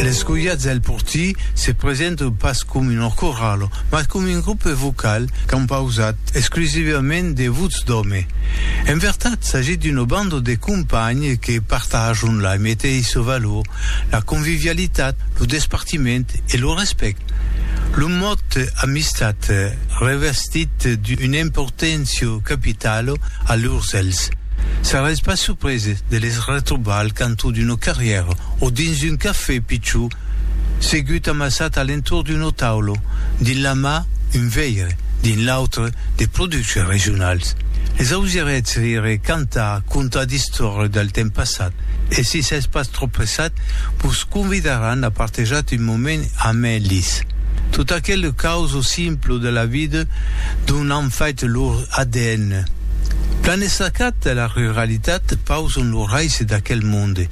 L'escolhat del portí se presenta pas com una corala, mas com un grupe vocal compausat exclusivament de votz d'òme. En vertat, s'agit d'una banda de companhs que partajan la meteissa valor, la convivialitat, lo despartiment e lo respèct. Lo mot amistat revestit d'una importància capitala a lurs èlhs. Seretz pas surpreses de les Retrobar al cantó d'una carrièra o dins un cafè pichó, segut amassat a l'entorn d'una taula, dins la mà un veire, dins l'autre de productes regionals. Les ausirètz rire, cantar, contar d'istòria del temps passat e si s'es pas trop pressat vos convidaràn a partejat un moment amb elis. Tot aquele causo simple de la vida dont an fait lor adn. Plan estacat de la ruralitat pauson lo raise d'aquel monde.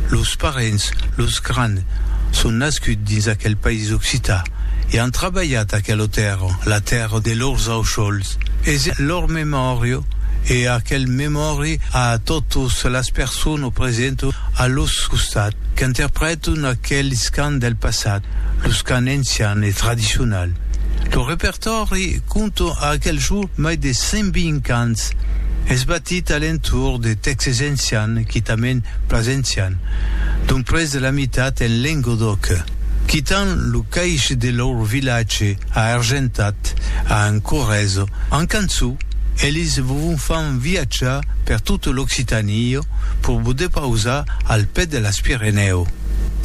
Los parents, los grands, son nascuts dins aquel país occità e an trabalhat aquela tèrra, la tèrra de lors aucòls. Es lor memòria e aquel memòri a totas las personas presentas a lors costat qu'interpretan aqueles cants del passat, los cants encians e tradicionals. Lo repertòri conta a aquel mai de 120 ans, es batit a l'entorn de tèxtes ancians quitament pas ancians, dont près de la mitat en Lengodòc, quitant lo caish de lor vilatge a Argentat, a un Corrèzo, en cançó, elis vovon fan viatjar per tota l'Occitanie pur vos depausar al pè de las Pirenèu,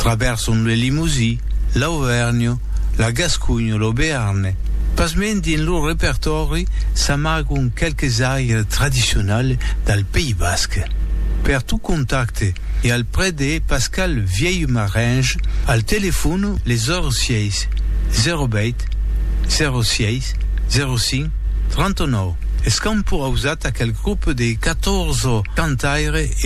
traverson le Limousin, l'Auvèrnha, la Gasconha, lo Bearn. Pasmens dins lo repertòri s'amagon qualques airs tradicionals del País Basc. Per tot contacte e al près de Pascal Vièlhmaringe al telefòn le 06 08 06 05 39 es qu'an purausat aquel grop de 14 cantaires e